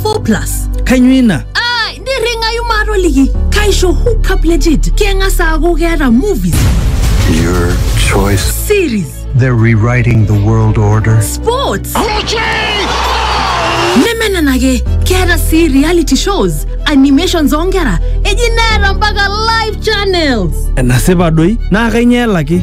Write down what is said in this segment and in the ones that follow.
4 plus kainyoo ina Ah, nirring'ayu maatoliki kaisho hookup legit keng'as aaku keeta movies Your choice. series They're rewriting the world order. sports neme nena ake keeta sii reality shows animations oonkera eji neeta mpaka live channels enasipa doi naa kainyoo elaki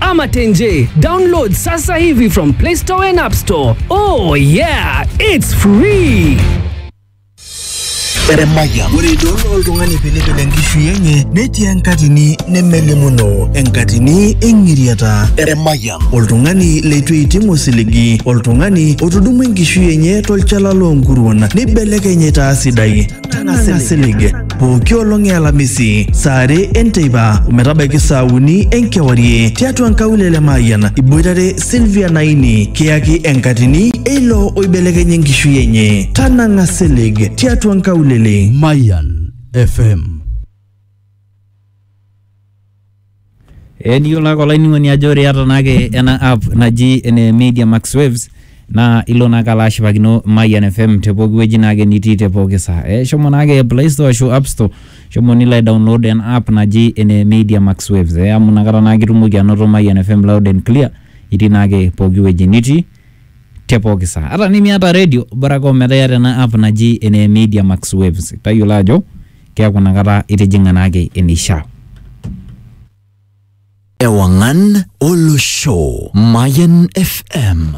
ama Tenje. Download sasa hivi from Play Store and App Store. Oh yeah, it's free. Eremaya. Ore idol oltung'ani pilipil enkishui enye netii enkatini nemelimuno enkatini eng'iriata. Eremaya. Oltung'ani leitu eiting osiligi, oltung'ani otudumua enkishui enye tolchala loonkuruon neibelekeny aitaa sidai. Tang'asa silig pooki olong e Alamisi saa are enteipa ometabaiki saa uni enkewarie tiatua nkaulele Mayian iboitare Sylvia Naini kiyaki enkatini eilo oibelekenya enkishui enye. Tanang'a silig tiatua nkaulele. Mayan FM Ee niyiolo ake olainining'oni ajo ore iyata naake ena app naji ene Media Max Waves, naa ilo naake alo ashipakino Mayian FM te pooki wueji naake nitii te pooki saa. Ee shomo naake play store ashu app store shomo nilo aidownload ena app naji ene Media Max Waves ee amu inakata naake itumoki anoto Mayian FM loud and clear itii naake pooki wueji nitii te pooki saa. Ata tenimiata redio bora ake ometaa iyata ena app naji ene Media Max Waves tayiolo ajo... keaku nakata itijing'a naake eneishaa. Ewang'an Olosho, Mayan FM.